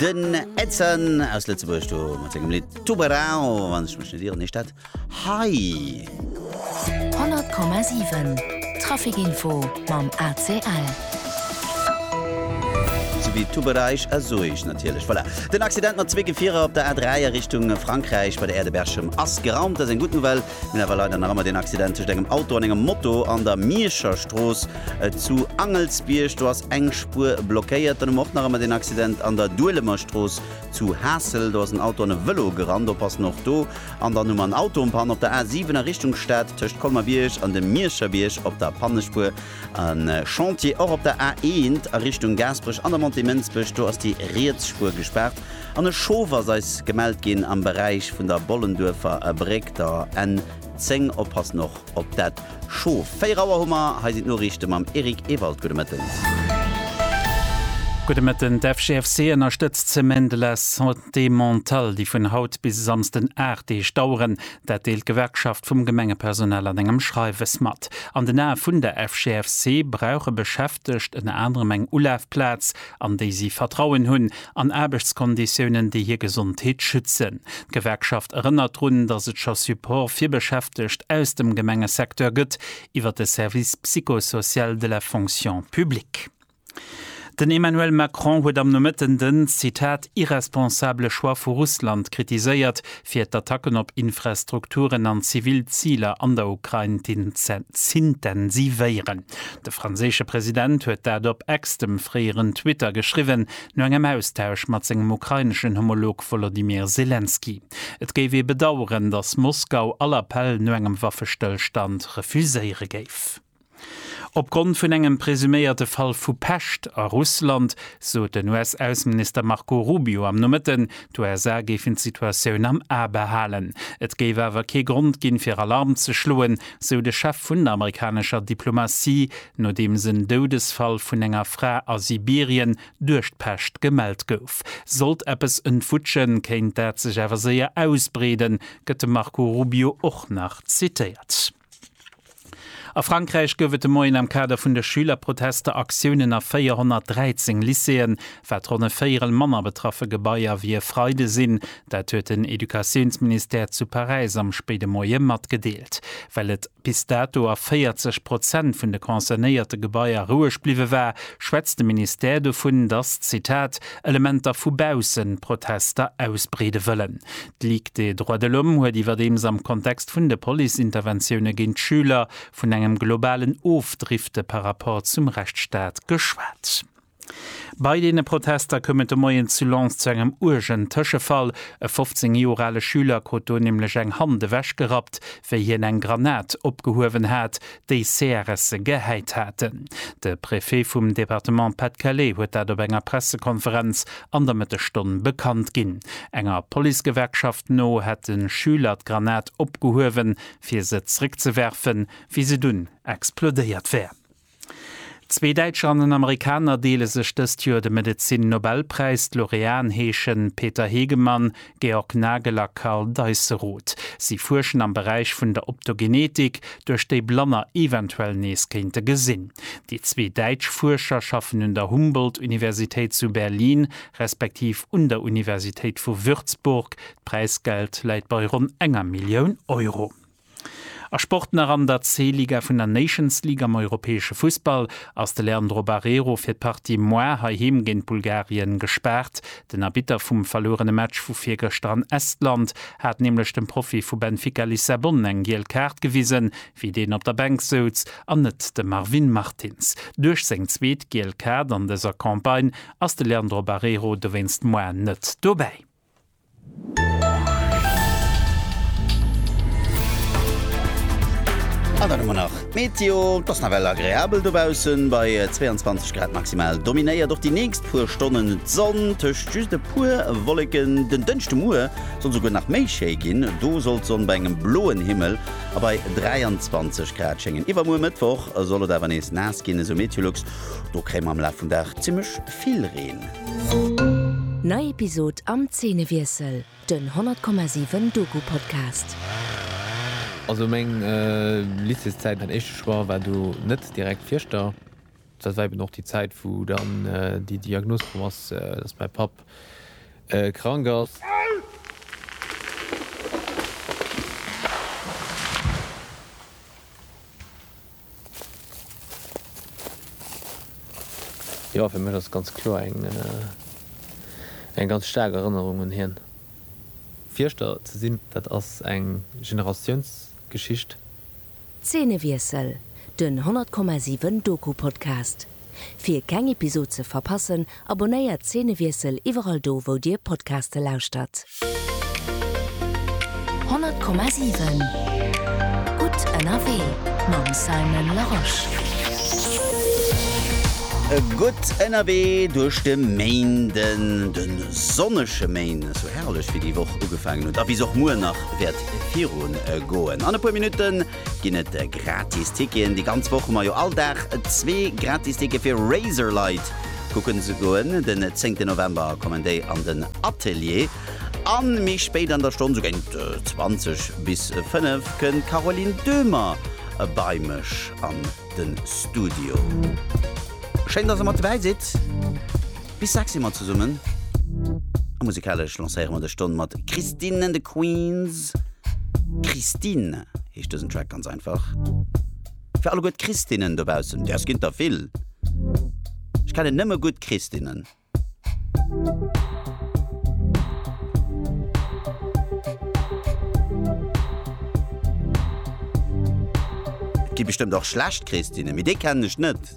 Den Edson aus Lëtzebuerg do mat sengem Lidd Tubarão, wann ech mech net ieren heescht dat hei. 100,7 Traficinfo mam ACL. Souwéi Tubereich a Soeich natierlech. Voilà. Den Accident mat zwee Gefierer op der A3 a Richtung Frankräich bei der Aire de Berchem ass geraumt. Dat ass eng gutt Nouvelle. Mir hunn awer leider nach ëmmer deen Accident tëscht engem Auto an engem Moto an der Mierscher Strooss zu Angelsbierg. Do ass eng Spuer blockéiert. Dann hu mer och nach ëmmer deen Accident an der Duelemer Strooss zu Haassel. Do ass en Auto an e Vëlo gerannt. Oppassen och do. An dann hu mer en Autopann op der A7 a Richtung Stad tëscht Colmer-Bierg an dem Mierscherbierg op der Pannespuer. E Chantier och op der A1 a Richtung Gaasperech an der Montée Mënsbech. Do ass déi riets Spuer gespaart. An e Schof ass eis gemellt ginn am Beräich vun der Bollenduerfer Bréck, der N10. Oppassen och op dat Schof. 4 Auer hu mer. Hei sinn d'Noriichte mam Eric Ewald. Gudde Mëtten. Gudde Mëtten. D'FGFC ënnerstëtzt d'Semaine de la Santé Mentale, déi vun haut bis e Samsden 8 Deeg daueren. Dat deelt d'Gewerkschaft vum Gemengepersonal an engem Schreiwes mat. An den Ae vun der FGFC brauche Beschäftegt ënner anerem eng Ulafplaz, an déi si Vertrauen hunn, an Aarbechtskonditiounen, déi hir Gesondheet schützen. D'Gewerkschaft erënnert drun, datt et scho Support fir Beschäftegt aus dem Gemengesecteur gëtt iwwer de Service psychosocial de la fonction publique. Den Emmanuel Macron huet am Nomëtten den, Zitat, irresponsabele Choix vu Russland kritiséiert, fir d'Attacken op Infrastrukturen an zivil Ziler an der Ukrain z'intensivéieren. De franséische President huet dat op X, dem fréieren Twitter, geschriwwen, no engem Austausch mat sengem ukraineschen Homolog Wolodymyr Selenskyj. Et géif ee bedaueren, datt Moskau all Appell no engem Waffestëllstand refuséiere géif. Opgrond vun engem presuméierte Fall vu Pescht a Russland sot den US-Ausseminister Marco Rubio am Nomëtten, d'USA géifen d'Situatioun am A behalen. Et géif awer kee Grond ginn, fir Alarm ze schloen, sou de Chef vun der amerikanescher Diplomatie, nodeems en Doudesfall vun enger Fra a Sibirien duerch d'Pescht gemellt gouf. Sollt eppes entwutschen, kéint dat sech awer séier ausbreeden, gëtt de Marco Rubio och nach zitéiert. A Frankräich gouf et de Moien am Kader vun de Schülerprotester Aktiounen a 413 Lycéeën. Wat ronn e Véierel manner betraffe Gebaier wéi e Freide sinn. Dat huet den Educatiounsministère zu Paräis am spéide Moie matgedeelt. Well et bis dato a 40 Prozent vun de concernéierte Gebaier roueg bliwwe war, schwätzt de Ministère dovun, datt, Zitat, Elementer vu baussen d'Protester ausbreede wëllen. D'Ligue des droits de l'homme huet iwwerdeems am Kontext vun de Police-Interventioune géint d'Schüler vun engem globalen Ofdrifte par rapport zum Rechtsstaat geschwat. Bei deene Protester koum et de Moien zu Lens zu engem uergen Tëschefall. E 15 Joer ale Schüler krut do nämlech eng Hand ewechgerappt, wéi hien eng Granat opgehuewen hat, déi CRSe gehäit haten. De Préfet vum Departement Pas-de-Calais huet dat op enger Pressekonferenz an der Mëttesstonn bekannt ginn. Enger Policegewerkschaft no hätte Schüler d'Granat opgehuewen, fir se zréckzewerfen, wéi se dunn explodéiert wär. Zwee Däitscher an en Amerikaner deele sech dëst Joer de Medezin-Nobelpräis. D'Laureaten heeschen Peter Hegemann, Georg Nagel a Karl Deisseroth. Si fuerschen am Beräich vun der Optogenetik, duerch déi Blanner eventuell nees kéinte gesinn. Déi zwee däitsch Fuerscher schaffen un der Humboldt-Universitéit zu Berlin respektiv un der Universitéit vu Würzburg. D'Präisgeld läit bei ronn enger Millioun Euro. A Sport nach, An der C-Liga vun der Nations League am europäesche Fussball ass de Leandro Barreiro fir d'Partie moar heiheem géint Bulgarien gespaart. Den Arbitter vum verluerene Match vu virgëschter an Estland hat nämlech dem Profi vu Benfica Lissabon eng giel Kaart gewisen, wéi deen op der Bänk souz, an net de Marvin Martins. Duerch seng zweet giel Kaart an dëser Campagne ass de Leandro Barreiro dowéinst moar net dobäi. An dann hu mer nach d'Meteo. Et ass nawell agreabel dobaussen bei 22 Grad. Maximal dominéiert och déi nächst puer Stonnen d'Sonn, tëscht just e puer Wolleken. Den Dënschdemuer soll souguer nach méi schéi ginn, do soll d'Sonn bei engem bloen Himmel a bei 23 Grad schéngen. Iwwermuer Mëttwoch soll et awer nees naass ginn, esou Meteolux. Do kréie mer am Laf vum Dag zimmlech Herbst vill Reen. Nei Episod am Zeenewiessel, den 100,7 Doku-Podcast. Also meng Lycéeszäit, mäin éischte Choix war do net direkt Fierschter. Dat war eben och déi Zäit, wou dann déi Diagnos komm ass, dass mäi Papp krank ass. Jo, fir mech ass et ganz kloer eng eng ganz staark Erënnerung un hien. Fierschter ze sinn, dat ass eng Generatiounsgeschicht. Zeenewiessel, den 100,7 Doku-Podcast. Fir keng Episod ze verpassen, abonnéiert Szenewiessel iwwerall do wou dir Podcaste lauschtert. 100,7 Gutt ënnerwee mam Simon Larosche. Gutt ënnerwee duerch de Méinden, de sonnege Méinden, sou herrlech wéi déi Woch ugefaangen huet a wéi se och muer nach wäert viru goen. An e puer Minutten ginn et gratis Ticketen. Déi ganz Woch hu mer jo all Dag zwee gratis Tickete fir Razorlight kucken ze goen. Den 10 November kommen déi an den Atelier. A méi spéit an der Stonn, sou géint 20 bis 5, kënnt d'Caroline Döhmer bei mech an de Studio. Schéin, dass der mat dobäi sidd! Bis 6 si mer zesummen a musikalesch lancéiere mer dës Stonn mat Christine and the Queens. Christine heescht dësen Track ganz einfach. Fir alleguer d'Christinnen dobaussen, däers ginn et der vill, ech kennen nëmme gutt Christinnen. Et gi bestëmmt och schlecht Christinnen, mee déi kennen ech net.